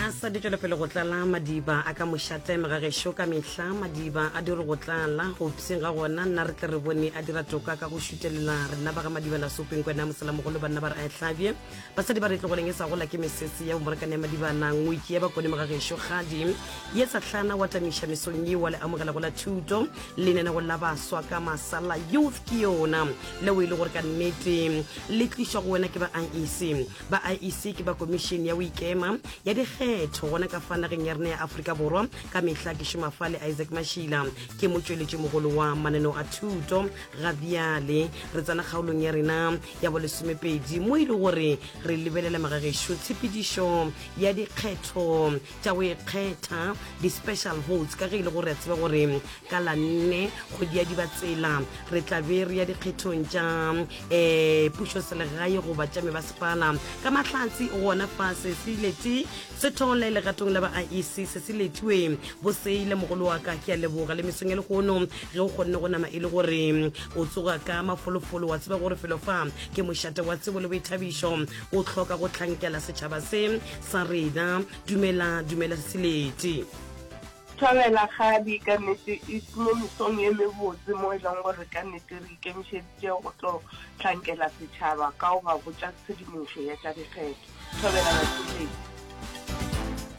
a sa di tšwelepele go tlala madiba a ka mošateme ga gešo ka mehla madiba a diri go tlala go pseng ga gona nna re tle re bone a dira toka ka go šutelela rena ba ga madiba la sopeng kwena moselamogolo banna ba re a e hlabje basadi ba re tlogoleng e sa gola ke mesese ya bomorakane ya madiba na ngwe ke ya bakone mo ga gešo kgadi ye sa tlhana wa tamiša mesong ye wa le amogela go la thuto lenene go la baswa ka masala youth ke yona le o e le gore ka nnete le tlišwa go wena ke ba iec ba iec ke ba komišene ya boikema ya dikgetho gona ka fa nageng ya rena ya aforika borwa ka mehla ke šoma fa le isaac mashila ke motšweletši mogolo wa mananeo a thuto ga bjale re tsena kgaolong ya rena ya bolesomepedi mo e le gore re lebelela magagešo tshepedišo ya dikgetho tša go ikgetha di-special votes ka ge e le gore a tseba gore ka la nne kgwedi ya diba tsela re tlabe re ya dikgethong tša um eh, pušo selegae goba tša mebasepala ka mahlatsi gona fa sesileti se thole legatong la ba a ise sesiletiwe boseile mogolo wa ka ke a leboga le mesong ya legono ge o kgonne go nama e le gore o tsoga ka mafolofolo wa tseba gore felo fa ke mošate wa tsebo le boithabišo o tlhoka go tlhankela setšhaba se sa rena dumela dumela sesileti. Thabela Kgabi, ka nnete it's mo mesong ye mebotse mo e leng gore ka nnete re ikemišeditše go tlo hlankela setšhaba ka go ba botša tshedimošo ya tša dikgetho. Thabela Batheletši.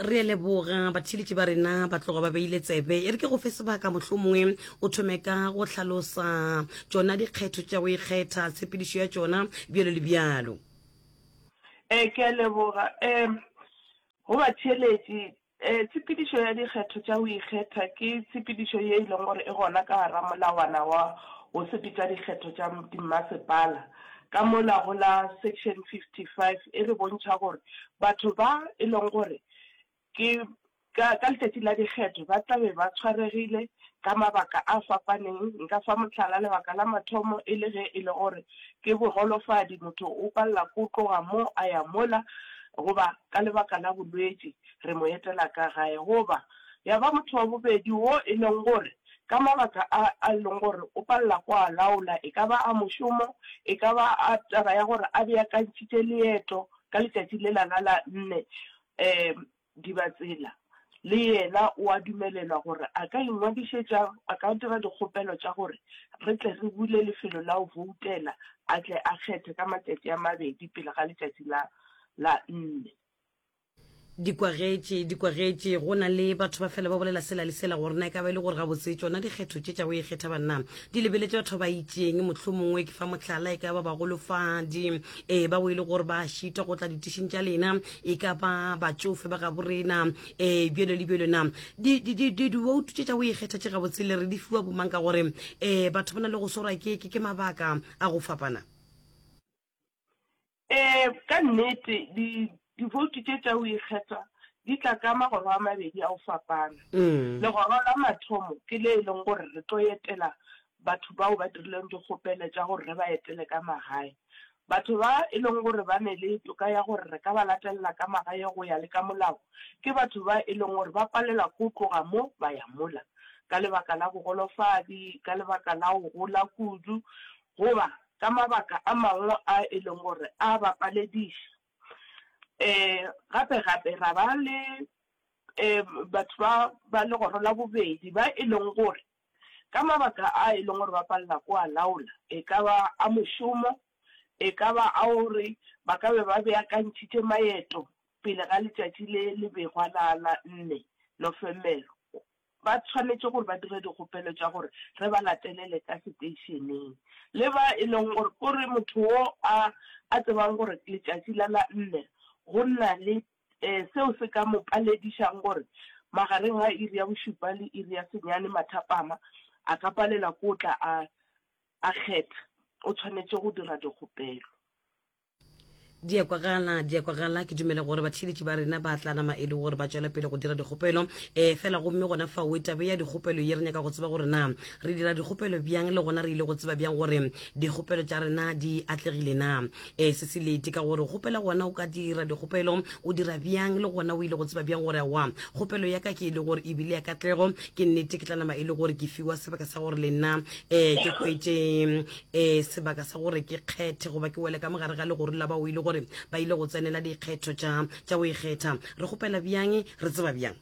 Re a leboga batheletši ba rena ba tloga ba beile tsebe. E re ke go fe sebaka mohlomongwe o thome ka go hlalosa tšona dikgetho tša go ikgetha, tshepedišo ya tšona, bjalo le bjalo. Ee, ke a leboga. Um go batheeletši, um tshepedišo ya dikgetho tša go ikgetha ke tshepedišo ye e leng gore e gona ka gare ga molawana wa go sepetša dikgetho tša dimmasepala. Ka mola go la section 55 e re bontšha gore batho ba e leng gore Ke, ka, ka Letšatši la Dikgetho, ba tla be ba tshwaregile, ka mabaka a fapaneng. Nka fa mohlala, lebaka la mathomo e le ge e le gore ke boholofadi, motho o palela ke go tloga mo a ya mola, goba ka lebaka la bolwetši, re mo etela ka gae. Goba ya ba motho wa bobedi wo e leng gore ka mabaka a, a e leng gore o palela ke go a laola, e ka ba a mošomo, e ka ba a taba ya gore a beakantšhitše leeto ka letšatši lela la la nne. Ee, Dibatsela le yena o a dumelelwa gore a ka ingwadišetša, a ka dira dikgopelo tša gore re tle re bule lefelo la go voutela, a tle a kgethe ka matšatši a mabedi pele ga letšatši la la nne. Dikwagetše, dikwagetše, go na le batho ba fela ba bolela sela le sela gore na e ka ba e le gore gabotse tšona dikgetho tše tša go ikgetha ba na di lebeletše batho ba ba itšeng. Mohlomongwe ke fa mohlala, e ka ba bagolofadi, ee, bao e le gore ba a šita go tla ditišing tša lena, e ka ba batšofe ba gabo rena um eh, bjelo le bjelo na diwoutu tše tša go ikgetha tše gabotse le re di fiwa bomang ka gore um batho ba na le go swarwa ke ke mabaka a go fapana um ka nnete diwoutu tše tša go ikgetha di tla ka magoro a mabedi a go fapana mm. legoro la mathomo ke le e leng gore re tlo etela batho bao ba dirileng dikgopele tša gore re ba etele ka magae Batho ba e leng gore ba ne le toka ya gore re ka ba latelela ka magae go ya le ka molao ke batho ba e leng gore ba palelwa ke go tloga mo ba ya mola ka lebaka la bogolofadi, ka lebaka la go gola kudu goba ka mabaka a mangwe a e leng gore a ba palediša. Gape-gape ra ba le batho ba ba legoro la bobedi ba e leng gore ka mabaka a e leng gore ba palela ko a laola, e ka ba a mošomo, e ka ba a gore ba ka be ba beakantšhitše maeto pele ga letšatši le le begwa la la nne Nofemere, ba tshwanetše gore ba dire dikgopelo tša gore re ba latelele ka seteišeneng. Le ba e leng gore, ko re motho wo a a tsebang gore letšatši la la nne go na le Ee, seo se ka mo paledišago gore magareng ga iri ya bošupa le iri ya senyane mathapama a ka palela ke o tla a a kgetha, o tshwanetše go dira dikgopelo. Di a kwagala, di a kwagala. Ke dumela gore batheeletši ba rena ba tla nama e le gore ba tšwela pele go dira dikgopelo. Ee, fela gomme gona fao e tabe ya dikgopelo ye re nyaka go tseba gore na re dira dikgopelo bjang le gona re ile go tseba bjang gore dikgopelo tša rena di atlegile na. e se se lete ka gore kgopela gona o ka dira dikgopelo o dira bjang le gona o ile go tseba bjang gore wa kgopelo ya ka ke e le gore e bile ya katlego ke nnete ke tla nama e le gore ke fiwa sebaka sa gore le nna um ke kwete um eh, sebaka sa gore ke kgethe goba ke wele ka mogare ga legoro la ba o ile gore ba ile go tsenela dikgetho tša go ikgetha re kgopela bjang re tseba bjang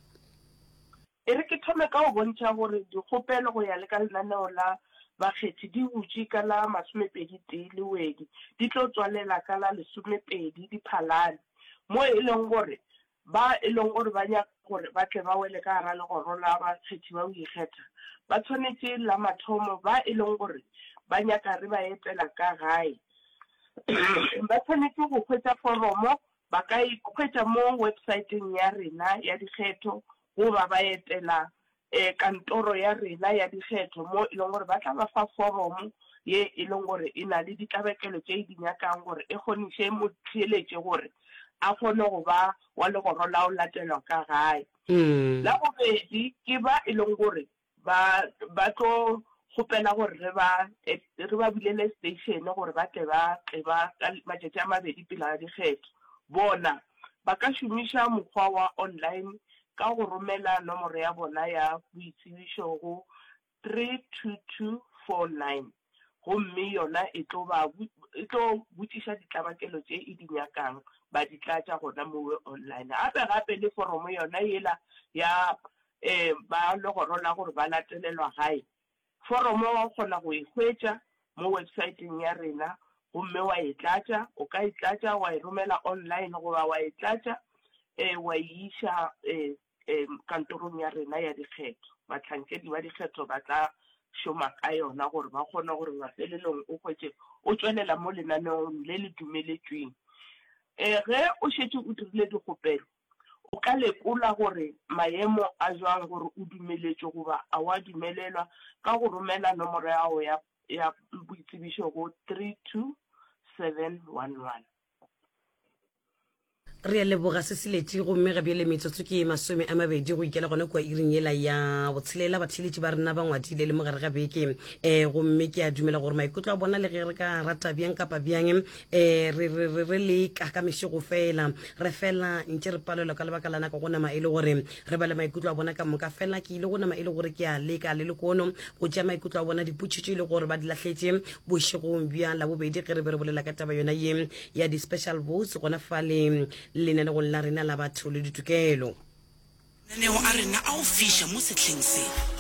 E re ke thome ka go bontšha gore dikgopelo go ya le ka lenaneo la bakgethi di butše ka la masomepedi-tee Lewedi, di tlo tswalela ka la lesomepedi Diphalane, mo e leng gore ba e leng gore ba nyaka gore ba tle ba wele ka gare legoro la bakgethi ba go ikgetha ba tshwanetše la mathomo ba e leng gore ba nyaka re ba etela ka gae ba tshwanetše go hwetša foromo Ba ka e hwetša mo websaeteng ya rena ya dikgetho goba ba etela kantoro ya rena ya dikgetho mo e leng gore ba tla ba fa foromo ye e leng gore e na le ditlabakelo tše e di nyakang gore e kgoniše motheeletši gore a kgone go ba wa legoro la go latelwa ka gae. La bobedi ke ba e leng gore Ba, ba tlo kgopela gore re ba, re ba bulele seteišene gore ba tle ba tle ba, ka matšatši a mabedi pele ga dikgetho. Bona, ba ka šomiša mokgwa wa online ka go romela nomoro ya bona ya boitsebišo go three two two four nine. gomme yona e tlo ba, e tlo botšiša ditlabakelo tše e di nyakang, ba di tlatša gona mowe online. Gape gape le foromo yona yela ya um ba legoro la gore ba latelelwa gae, foromo wa kgona go e hwetša mo websaeteng ya rena gomme wa e tlatša, o ka e tlatša wa e romela online goba wa e tlatša um wa e iša um um kantorong ya rena ya dikgetho. Bahlankedi ba dikgetho ba tla šoma ka yona gore ba kgone gore mafelelong o hwetše o tšwelela mo lenaneong le le dumeletšweng. Um ge o šetše o dirile dikgopelo, o ka lekola gore maemo a jwang gore o dumeletšwe goba a wa dumelelwa ka go romela nomoro ya gago ya ya boitsebišo go 32711. Re a leboga se se letše gomme ga bjale metsotso ke ye masome a mabedi go ikela gona kua iring yela ya botshelela batheeletši ba rena ba ngwadile le mogare ga beke um gomme ke a dumela gore maikutlo a bona le ge re ka rata bjang kapa bjang um re leka ka mešego fela re fela ntše re palelwa ka lebaka la nako go nama e le gore re ba le maikutlo a bona ka moka fela ke ile go nama e le gore ke a leka le lekono go tšea maikutlo a bona dipotšitšo e le gore ba di lahletše bošegong bja labobedi ge re be re bolela ka taba yona ye ya di-special votes gona fale lenanegong la rena la batho le ditokelo. Mananeo a rena a go fiša mo sehleng se.